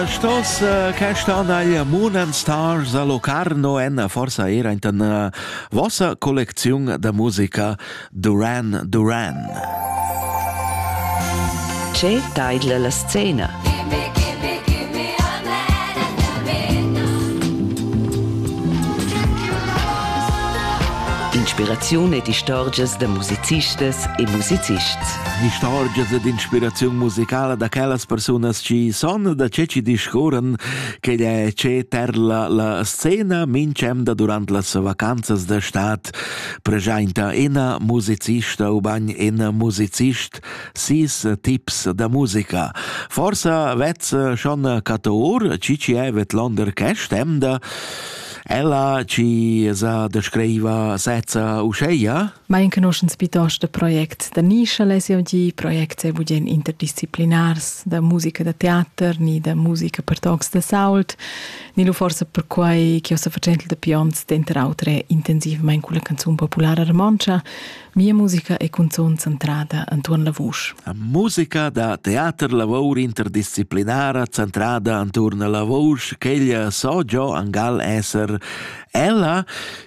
Stos questa anaglia Munan Stars a Locarno en forsa era in den vossa collecziun da musica Duran Duran. Che taidla la scena? Inspiraziun ed istorgias da musicistas e musicists. Istorgias ed inspiraziun musicala da quellas persunas chi son da che chi discurran chi'd è che terla la scena minch'emda durant las vacanzas da stad preschainta ina musicista ubain in musicist sis tips da musica. Forsa vez schon catur chi chi è vetlonder quest'emda? Ella chi sa descriva sezza uscheia? Ma enconuschens pitost da projects da nischa less jau dir, projects e budien interdisciplinars, da musica da teater, ni da musica per tocs da sault, ni lu forsa perquai che ho sa fatschentel da pionts denter autre intensivmein culla canzun populara romontscha, mia musica e cunzun centrada antuon la vusch. Musica da teater lavor interdisciplinara centrada anturn la vusch, quella so jo angal esser ella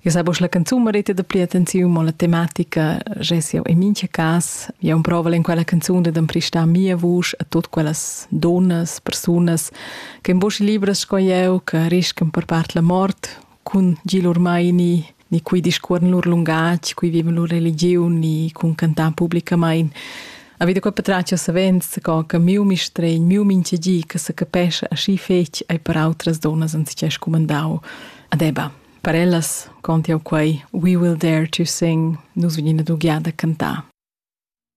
Eu sai busch la canzun merita da pli attenziun, mo la tematica ges jau in mincha cas. Eu proval in quella canzun da d'empristar mia vusch a tot quellas donnas, persunas che in busch libras sco eu, che riscan per part la mort cun Gil Urmaini, ni cui discuorn lur lungatg, cui vivan lur religiun, ni cun cantar publicamain. A vita quella patraccia savens co che miu mistregn, miu minchegi che se capesce aschi fetg ai per outras donnas anziché scumandau. Adeba. Per ellas cont jau quai We will dare to sing, nus vegnin ad ugliar da cantar.